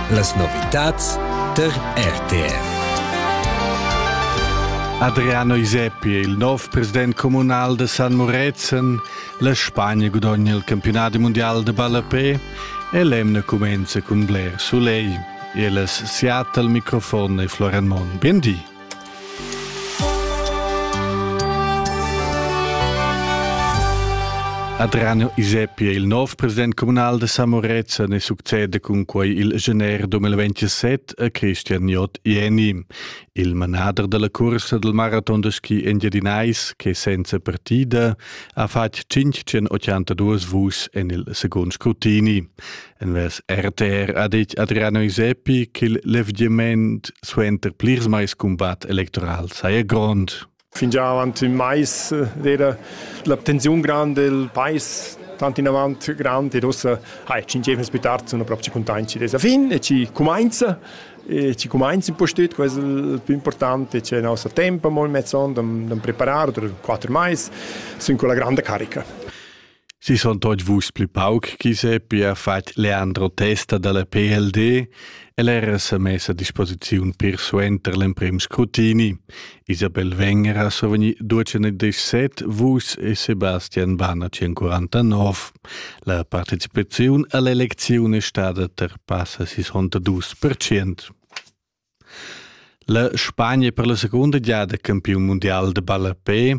Las novitads tar RTR. Adriano Iseppi è il nov president communal da San Murezzan. La Spagna gudogna il campionat mondial de ballapé e l'emna cumenza cun bler soleil. E las Seattle microfon e Floran Mon. Buen di. Adriano Iseppi è il nov president communal da Samorezan e succede cun quai il gener 2027 a Christian J. Jeni, il manader della cursa del marathon da ski engiadinais che senza partida ha fatg 582 vus en il second scrutini. Envers RTR ha detg Adriano Isepi ch'il levgiament suenter plirs mais cumbat electoral saja grond. Fingià avant ün mais era la tensiun grand del pais tant in avant grand ed ussa hai ci insieme più tardi sono proprio contenti dessa fin e ci comincia e ci comincia un po' stüt questo il più importante c'è il nostro tempo molto mezzon da preparare per quattro mais sin quella grande carica Si sun tuot vus plü pauc chi seppi ha fat Leandro Testa da la PLD e l'eira sa mess a disposiziun pir suenter l'emprim scrutini. Isabel Wenger ha survgni duecent e set, vus e Sebastian Banner 149. La partecipaziun a l'elecziun è stada ter passa 62%. La Spagna per la secunda giada campiun mundial da ballapè.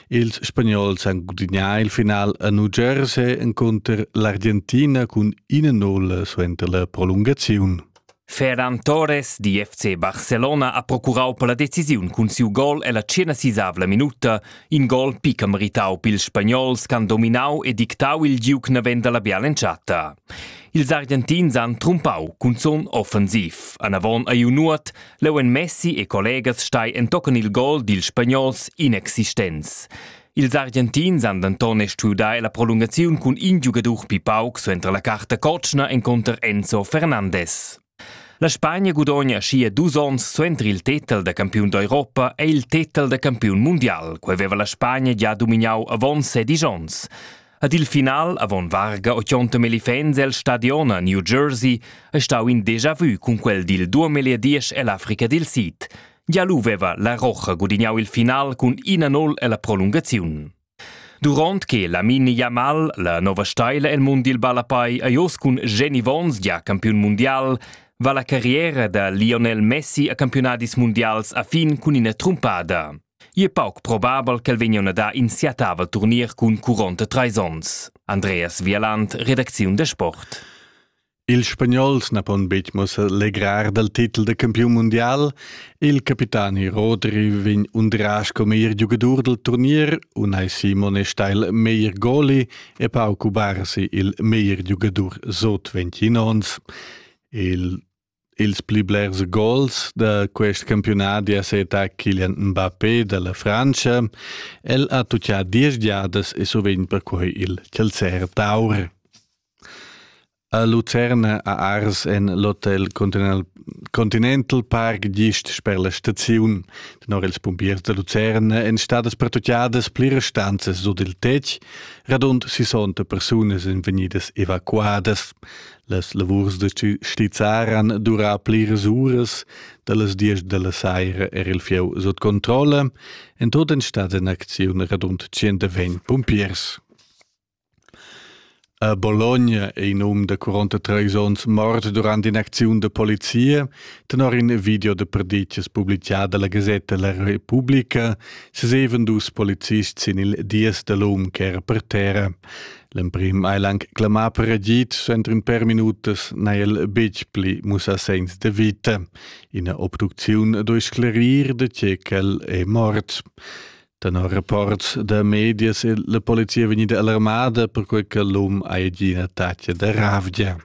Ils Spagnols han gudignà il final a New Jersey encunter l'Argentina cun ina nulla suenter la prolungaziun. Ferran Torres di FC Barcelona ha procurau per la decisiun cun siu gol ella tschenasisavla minuta, in gol picca meritau pils spagnols che han dominau e dictau il giug naven dalla biala entschatta. Ils Argentins han trumpau cunzun offensiv. Anavon ei nuot, leu en Messi e collegas stai entochen il gol dils spagnols inexistents. Ils Argentins han denton stuiu dar la prolungaziun cun in giugadur pli pauc suenter la carta cotschna enconter Enzo Fernandes. La Spagna gudogna schia dus onns suenter il tetel da campiun d'Europa è il tetel da campiun mundial. Quei veva la Spagna gia domignau avon sedisch onns. Ad il final, avon varga 80 elefants el stadion a New Jersey, è stau in déjà vu cun quel dil 2010 ell'Africa dil Sid. Gia lu veva la Rocha gudignau il final cun 1-0 ella prolungaziun. Duront che Lamine Yamal, la nova steila el mund dil ballapai, ei oz cun Jenny Vons gia campiun mundial, va la carriera da Lionel Messi a campiunadis mundials a fin cun ina trumpada. Ei è pauc probabel ch'el vegnion a dar in siatavel turnier cun curonta treis onns. Andreas Wieland, redacziun da sport. Ils Spagnols na pon betg mussar legrar dal titel da campiun mundial. Il capitani Rodri vegn undrà sco meglier giugadur dal turnier, unai Simone Steil meglier goli e Pauco Barsi il meglier giugadur sot 20 onns. Il ils pli blers gols da quest campiunat è seta Kylian Mbappé da la Frantscha. El ha tuttà diesch giadas e sovint perquai il Celser Taur. A Lucerna ha ars en l'hotel Continental Continental Park gist sper la staziun. Tenor ils pumpiers da Lucerna èn stadas pertutgadas pliras stanzas sut il tetg, radund 60 persunas èn vegnidas evacuadas. Las lavurs da stizzar han durà pliras uras, da las diesch da la saira era il fieu sut controlla. En tut èn stats en acziun radund 120 pumpiers. A Bologna è in um da quarantatrais onns mort durant in'acziun da polizia. Tenor in video da perditgas publitgà da la gasetta La Repubblica sesevan dus polizists sin il dies da l'um ch'era per terra. L'emprim ha el anc clamà per agid, entrin per minutas n'ha el betg pli mussà segns da vita. Ina obducziun doi sclarir da tge ch'el è mort. Tenor rapports da medias è la polizia vegnida alarmada perquai che l'um ha gì in attacc da ravgia.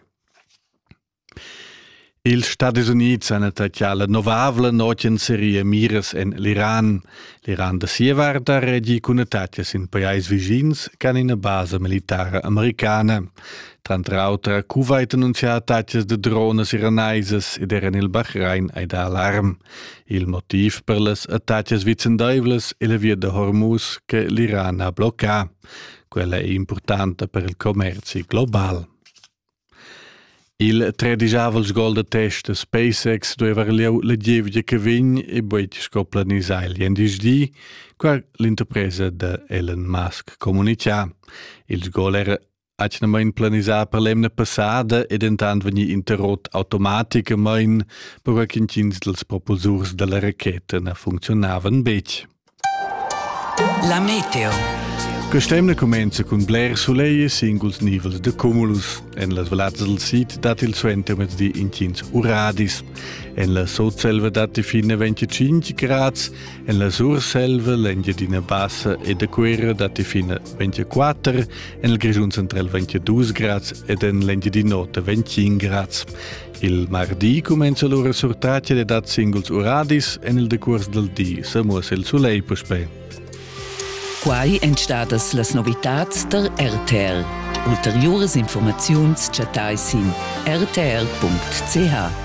Ils Stadis Unids han attaccà la novavla notg en seria miras en l'Iran. L'Iran da sia vart ha reagì cun attaccs in pajais vischins che han ina basa militara americana. Tranter auter ha Kuwait annunzià attaccs da drones iranaisas ed era en il Bahrain hai dà alarm. Il motiv per las attacas vicendaivlas è la via da Hormuz che l'Iran ha bloccà. Quella è importanta per il commerzi global. Il tredigiavel gol da test da SpaceX dueva lieu la gievgia che vegn e buet sco planisà il gendisdi, qua l'interpresa da Elon Musk comunicà. Il gol era atgnamain planisà per l'emna passada e dentant vegnì interrot automaticamain, perquai ch'intgins dals propulsurs da la racheta na funcziunavan betg. La meteo. Quest'emna cumenza cun bler sulegl e singuls nivels de cumulus. En las vallats del sid dat il suentermezdi intgins uradis. En la sotselva datti fine 25 grads, en la surselva l'Engiadina Bassa e de Cuera datti fine 24 En il Grischun central vegn dus grads ed en l'Engiadinò 25 grads. Il mardi cumenza lura surtratga da singuls uradis en il decurs dal di, sa muossa il sulegl puspè. Quai èn stadas las novitads der RTL. Ulteriuras informaziuns chattai sin rtl.ch.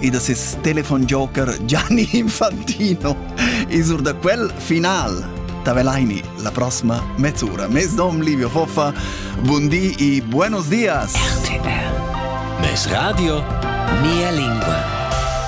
e da ses telefonjoker Gianni Infantino. E sur da quel final Tavelaini la prossima mezz'ora. Mes nom Livio Foffa, buon di e buenos dias! RTL. Mes radio, mia lingua.